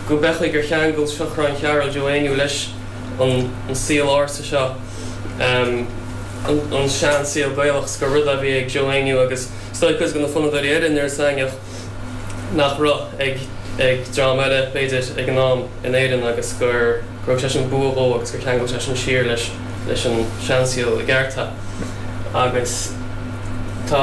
Go mb'fhéidir gur cheangail Seachrán Chearbhaill Joe Éinniú leis an saol ársa seo, an sean saol Gaelach, 's gur rud a bhí ag Joe Éinniú agus 's dóigh cuid go na fonnadóirí eile in Iorras Aithneach nach raibh ag dream eile b'fhéidir ag an am in Éirinn agus gur thug sé sin bua dhó agus gur cheangail sé sin siar leis an sean saol i gceart é agus tá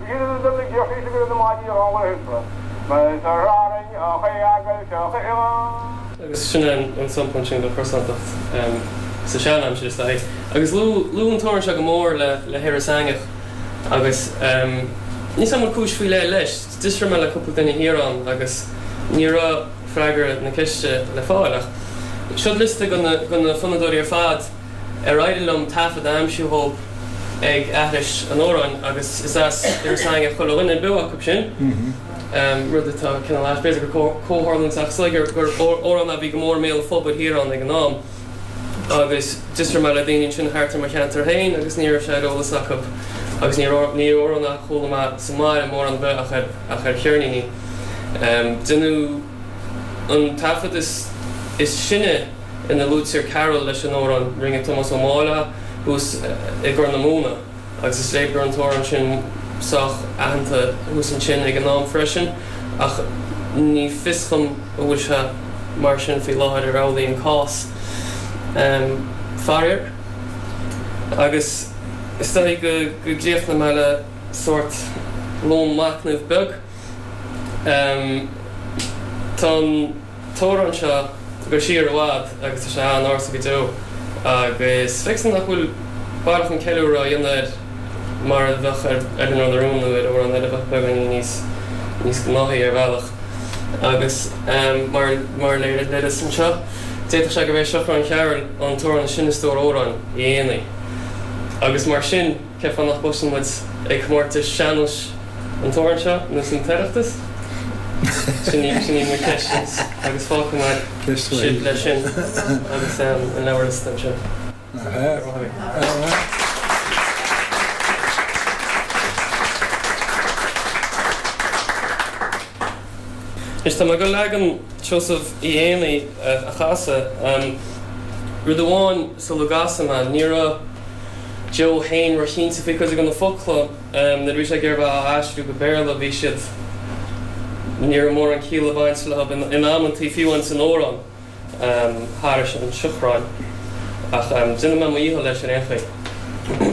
B'fhíor do na Déisigh go raibh na maidí ag ól ar thuirse. Ba é seo a rá linn, Ioc é eagal, teoc é imeall. Agus sin é an sampla sin don chrosántacht sa sean-aimsir, is dóigh. Agus luadh an t-amhrán seo go mór le hIorras Aithneach agus níl 's agam an cúis faoi leith leis. D'fhiosraigh mé le cúpla duine thiar ann agus ní raibh freagra na ceiste le fáil ach seod liosta go na fonnadóirí ar fad, Ar éirigh liom taifead a aimsiú dhóibh ag aithris an amhráin agus is as Iorras Aithneach chuile dhuine beo acu sin, rud atá cineál ait. B'fhéidir gur comhtharlúint ach is léir gur amhrán a bhí go mór i mbéal an phobail thiar ann ag an am agus d'fhiosraigh mé le daoine ansin thart ar mo cheantar féin agus ní raibh sé ar eolas acu agus níorbh amhrán é a chuala mé sa mbaile mórán ar bith ach ar cheirníní. Déanadh an taifead is sine. ina luaitear Cearbhall leis an amhrán rinne Tomás Ó Máille thuas i gCorr na Móna agus is léir go raibh an t-amhrán sin sách aitheanta thuas ansin ag an am freisin ach ní fios dhom an bhfuil sé mar sin faoi láthair ar amhlaidh an cás. Faraor agus is dóichí go gcríochnóidh mé le sórt lón machnaimh beag. Tá an. t-amhrán seo ag goil siar i bhfad agus tá sé an-ársa go deo agus feictear nach bhfuil baileach an ceiliúradh á dhéanamh air mar a bheadh ar Eileanóir na Rún nó ar amhrán eile a bheadh beagáinín níos níos gnáthaí ar bhealach agus mar mar a léiríos anseo d'fhéadfadh sé gurb é Seachrán Chearbhaill an t-amhrán is sine i stór amhrán Uí Éanaí agus mar sin. Cén fáth nach gcloiseann muid ag comórtais sean-nóis an t-amhrán seo nó san tOireachtas? Sin í, sin í mo cheistse agus fágfaidh mé sibh leis sin agus an leabharliosta ansin. Go raibh maith agat. Anois tá mé ag goil leagan Seosaimh Uí Éanaí a chasadh. Rud amháin sula gcasfaidh mé, ní raibh Joe fhéin róchinnte faoi cuid go na focla. Nuair a bhí sé ag iarraidh bheith á aistriú go Béarla bhí siad, ní raibh mórán ciall ag baint leo in amanntaí, fiú ins an amhrán thairis an Seachrán. Ach déanfaidh mé mo dhícheall leis ar aon chaoi.